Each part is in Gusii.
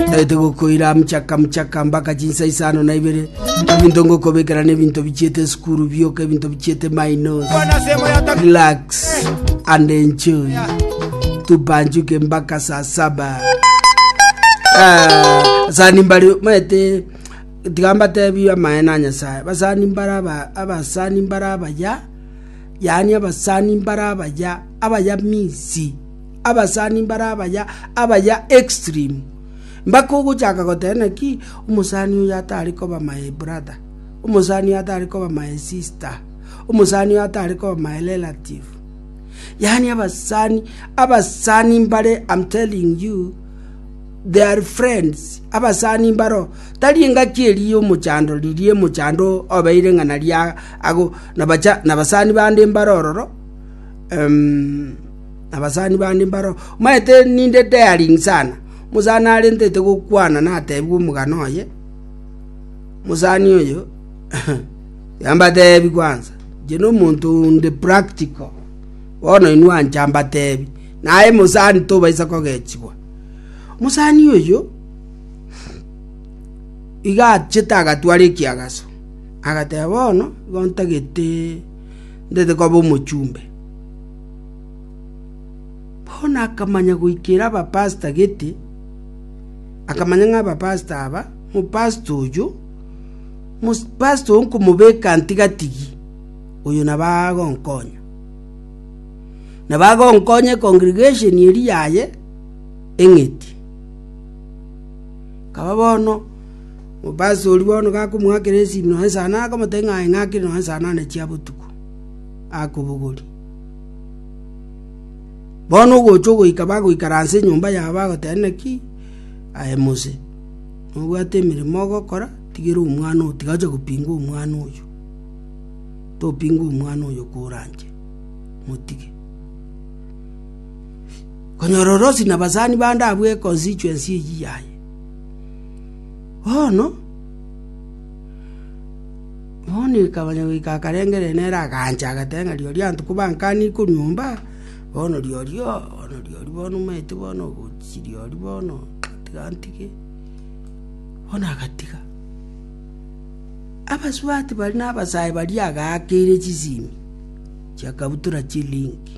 Naete gokoira mchaka mchaka mpaka chinsa isano na ibere ebinto ngokobekera n'ebinto bichiete esukuru bioka ebinto bichiete minus relax and enjoy tupanjuke mpaka saa saba Ah, sani mbari maete tigamba tebi amaye na nyasaye basani mbara aba- abasani mbara abaya yani abasani mbara abaya abaya misi Abasani mbare abaya abaya extreme mpaka ogochaka goteba naki omosani oyo atari koba my brother, omosani oyo atari koba my sister, omosani oyo atari koba my relative. Yaani abasani abasani mbare am telling you they are friends abasani mbaro tari engaki eri ya omochando riria emochando obeire ng'a naria ago nabacha nabasani bande mbare ororo ehm. Abasani bande mbaro omanyete ninde daring sana. Omosani arentete gokwana natebigwe omogano oye, omosani oyo, Reka mbatebi kwansa, inche nomonto onde practical, bono inwe ancha mbatebi, naye omosani tobaisa kogechigwa. Omosani oyo iga achete agatwara ekiagaso, agateba bono igo ntagete ntagete koba omochumbe. Bono akamanya goikera abapasita gete, akamanya ng'a abapasita aba, omopasita oyio, omopasita oyo nkomobeka ntigatigi, oyo nabo agonkonya. Nabo agonkonya ekongregesheni eria yaye eng'iti. Kaba bono, omopasita oria bono gakomoakera esimi nonye saa nane akamotebia ng'a aye ng'akire nonye saa nane chia botuko. akobogori. Bono ogocha ogoika bagoikaransa enyomba yabo agoteba naki aye Mose nobwate emeremo ogokora tigera omwana oyo tiga acha gopinga omwana oyo topinga omwana oyo koranche motige konyora orosi na basani bande abwo econstituency eyi yaye bono Monika onye goika akarengereria nere agancha, agateba ng'a rirorio abanto kobankanie korwa nyomba, bono rirorio, bono rirorio bono omanyete bono ogochia rirorio bono, tiga ntige, bono agatiga. Abasubati baria na abasae baria agakeire chisimi chia kabutura chie link.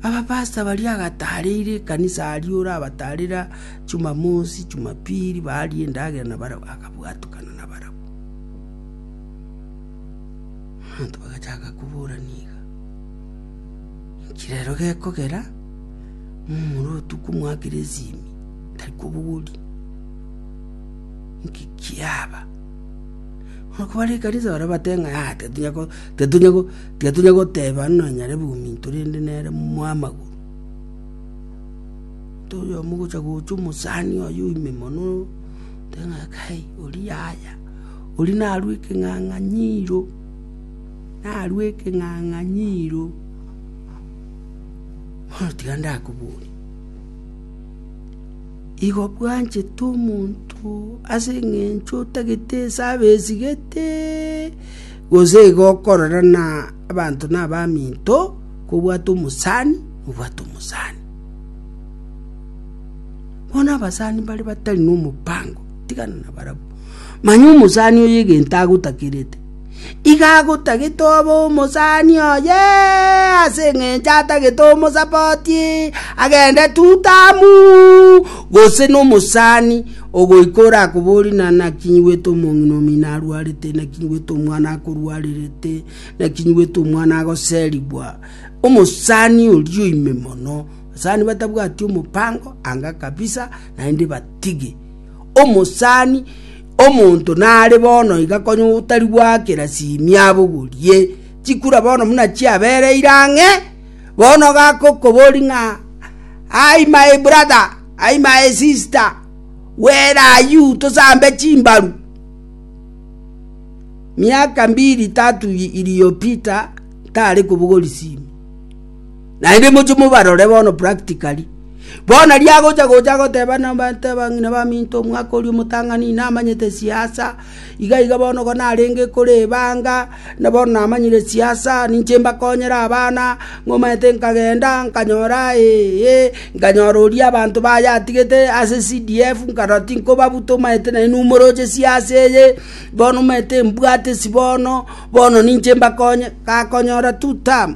Abapastor baria agatareire ekanisa aria orabatarera Jumamosi, Jumapili barie endagera na barabwo. Abwo atukana nabarabwo. Abanto bagachaka koborana iga, Inki rero gekogera momura otuko omwa Gerizimi tari kobogori? Inki kiaba? Bono kobare ekanisa baria bate ng'a aa titunya ko titunya ko titunya goteba nonya nyare bominto rende nere mwamagoro. Omonto oyomo ogocha gocha omosani oye oime mono. Te ng'a kai, oria yaya, oria narue ekeng'ang'anyiro, narue ekeng'ang'anyiro. Bono tiga ndakoborie, igo bwanchete omonto ase eng'encho otagete esabe esigeteee, gose igo okorora na abanto na abaminto, kobwate omosani, obwate omosani. Bono abasani mbare batari nomobaango, tigana nabarabwo. Manya omosani oye egento agotakerete, iga agotagete obe omosani oye, ase eng'encho atagete omosapoti, agende tutamu, gose nomosani ogoika orakoborie na naki nyiwete omong'ina omino arwarete, naki nyiwete omwana akorwarerete, naki nyiwete omwana agoserigwa, omosani oria oime mono. Abasani batabwati omobango anga kabisa naende batige. Omosani omonto nare bono iga konya otari gwakera simia abogorie chikura bono muna chiabereire ang'e bono gakokobori ng'a ai my brother ai my sister where are you tosambe chimbaru miaka mbiri tatu iliyopita tare kobogori simu Naende moche mobarore bono practically. Bono riria agocha gocha agoteba nabanto abang'ina baminto omwaka oria omotang'ani inamanyete esiasa, iga iga bono igo narenge kore ebanga, na bono namanyire esiasa, ninche mbakonyere abana, ng'a omanyete nkagenda nkanyora eeh, nkanyora oria abanto baye atigete ase CDF nkarora tinkobabuta omanyete naende numoroche siasa eye, bono omanyete mbwate esi bono, bono ninche mbakonye, gakonyora two term.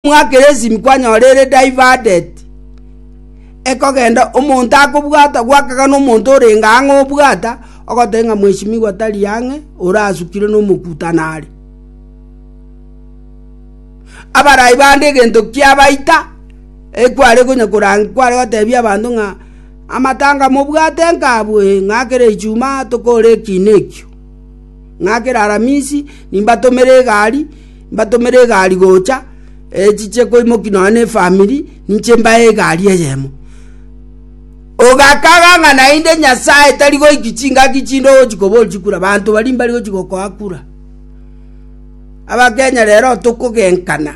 Mwa Keresimi kwanyora ere diverted, ekogenda omonto akobwata gwakaga nomonto orenge ang'e obwata, ogoteba ng'a mweshimigwa tari ang'e, orasukire nomokuta nare. Abarai bande egento kiabaita, ekware konya korang kware gotebia abanto ng'a amatanga mobwate nkabwe ng'a kera Ijumaa tokore ekiina ekio, ng'a kera Aramisi nimbatomere egari, mbatomere egari gocha, echiche koimoki nonya ne efamiri, ninche mbae egari eyemo. Ogakaga ng'a naende Nyasaye tari goiki chingaki chinde ogochi kobori chikura, banto baria mbari gochi gokoa kura. Abakenya rero tokogenkana.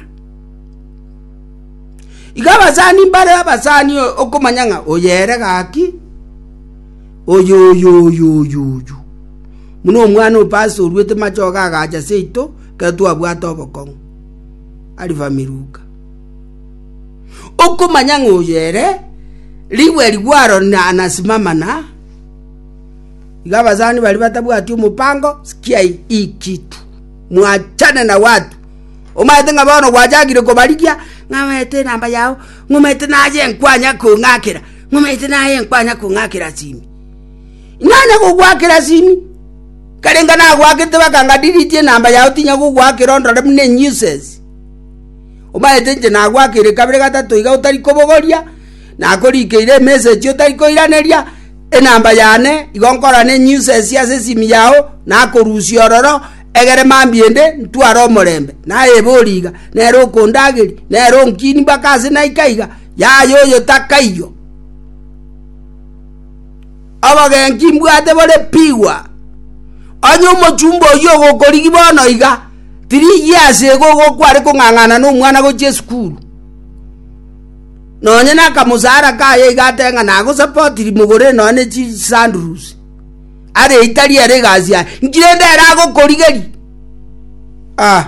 Iga abasani mbare abasani okomanya ng'a oyo ere gaki, oyoyoyoyoyo. Buna omwana o pastor oruete machogo agacha seito, Ekero twabwate obokong'u, Alifamiruka, okomanya ng'a oyo ere rigwe rigwaro na anasimama na iga abasani bari batabwati omopango sikiai ikitu mwachane na watu omaete ng'a bono gwachagire kobarigia ng'a omanyete enamba yao ng'a omanyete naye nkwanya kong'akera ng'a omanyete naye nkwanya kong'akera simi. Inee nagogwakera ase ime? Nkarenga nagwakete bakanga delete enamba yao tinya gogwakera ondore buna enuisance. Omanyete inche nagwakeire kabere gatato iga otari kobogoria, nakorikeire emessage otari koiraneria, enamba yane igo nkorora enuisance ase esimi yao nakorusia ororo egere mambia ende ntware omorembe. Naye ebori iga, nere okondageria, nere onkinia mpaka ase naika iga, yaya oyo takaiyo. Obogenki mbwate borepigwa. Onye omochumba oyio ogokorigi bono iga, tirigie ase igo igo kware kong'ang'ana nomwana gochia esukuru. Nonye nakamosara kaye iga ate ng'a nagosapotiri mogorere nonye ne chisandals. Areitarie ere egasi yaye. Nki rende ere agokorigeria? Ah.